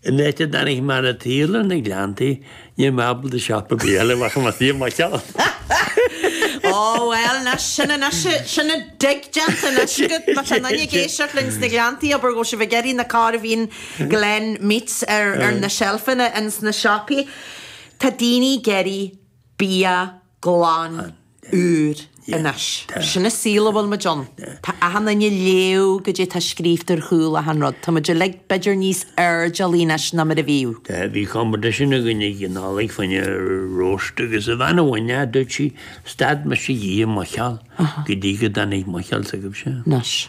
An áit a dtáinig mé ar an tsaol, ar na Gleanntaí, níl mé ábalta siopa bídh eile a bheith chun mo thí i mo cheann! Ó, bhuel, ná sin an oíche, sin an dtigh déanta anois agat, má tá duine ag éisteacht linn sna Gleanntaí, abair go bhfuil sibh ag iarraidh na Corveen Glen Meats ar na seilfeanna ins na siopaí. Tá daoine ag iarraidh bia glan úr anois. Sin an saol a bhfuil muid ann. Tá achan duine ag léamh cad é atá scríobhta ar chúl achan rud. Tá muid uilig b'fhéidir níos airdeallaí anois ná mar a bhíodh. Bhí competition againn ag an Nollaig fá choinne roast agus an bhean a bhain é, dúirt sí, stad mise d'ithe muiceoil go dtí go dtáinig muiceoil s'agaibhse. Anois.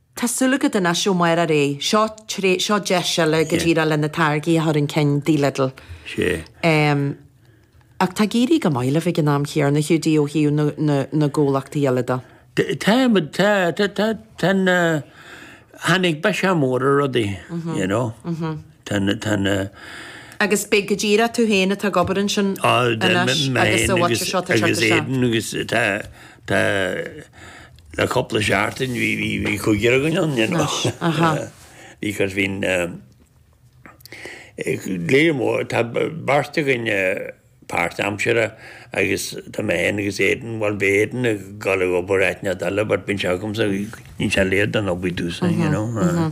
Tá súil agat anois, Ó Máire, ré? Seo tré, seo deis eile go díreach le na táirgí a chur chun cinn tigh Lidl. Sea. Em, ach tá ag éirí go maith libh ag an am chéanna, Hiúdaí, ó thaobh na, na, na gcomhlachtaí eile de. T, tá muid, tá, tá, tá, tá na, tháinig biseach mór ar rudaí, you know. Tá na, tá na. Agus beidh go díreach tú féin atá ag obair ansin anois agus sa bhfaiteadh seo, tá sé go seo. Agus Aidan agus tá, tá, Le cúpla seachtain bhí, bhí, bhí cúigear againn ann, you know. Anois, aha. Because bhíonn eh, eh, léiriú mór, tá b- beirt againn eh, páirtaimseartha agus tá mé fhéin agus Aidan, bhuel bhí Aidan ag gabháil ag obair áit inteacht eile but bíonn sé agamsa, níl sé léir don obair dtús, you know, eh.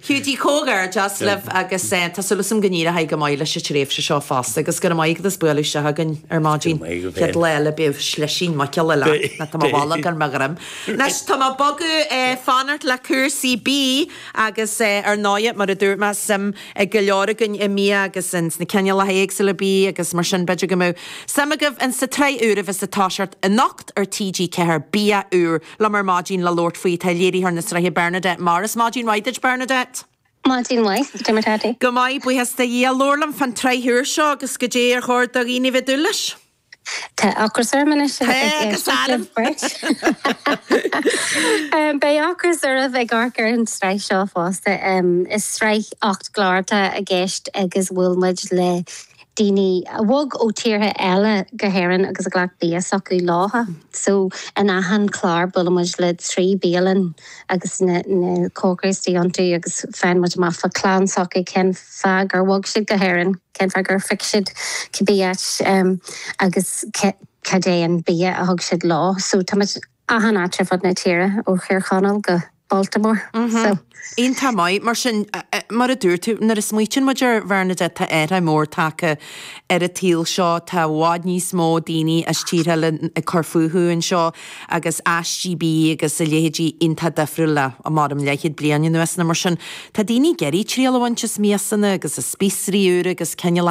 Hiúdaí Comhghairdeas libh agus tá súil asam go n-éireoidh go maith leis an tréimhse seo fosta agus go raibh maith agat as bualadh isteach chugainn ar maidin chéad lá eile beidh slisín muiceola leat ná tá mo bholg ar mo dhroim anois tá mé ag bogadh fanacht le cúrsaí bídh agus ar ndóighe mar a dúirt mé suim ag go leor againn i mbia agus ins na cineálacha éagsúla bídh agus mar sin b'fhéidir go mbeadh suim agaibh ins an tsraith úr a bheas ag toiseacht anocht ar TG4 Bia úr liom ar maidin le labhairt faoi tá léiritheoir na sraithe Bernadette Morris. Maidin mhaith duit, Bernadette! Maidin mhaith, cad é mar atá tú. Go maith, buíochas do Dhia. Labhair liom fán tsraith úr seo agus cad é ar chóir do dhaoine bheith ag dúil leis. Tá ocras orm anois ag éisteacht libh beirt. Beidh ocras oraibh ag amharc ar an tsraith seo fosta. Is sraith ocht gclár atá i gceist agus bhuail muid le daoine a bhog ó thíortha eile go hÉirinn agus a ghlac bia s'acu leo. So in achan chlár buaileann muid le trí bialann agus na cócairí istigh iontu agus faigheann muid amach fá chlann s'acu, cén fáth gur bhog siad go hÉirinn, cén fáth gur phioc siad cibé áit agus cad é an bia a thug siad leo. So tá muid. achan áit ar fud na tíre, ó Thír Chonaill go Baltimore. So. Iontach maith. Mar sin, mar a dúirt tú, nuair a smaoitíonn muid ar Bhernadette, tá athraithe mór tagtha ar an tsaol seo, tá i bhfad níos mó daoine as tíortha eile ag cur fúthu anseo agus aistí bídh agus a leithéidí iontach difriúil le, maram, leithead bliain anuas. Mar sin, tá daoine ag iarraidh triail a bhaint as miasanna agus as spíosraí úra agus cineálacha.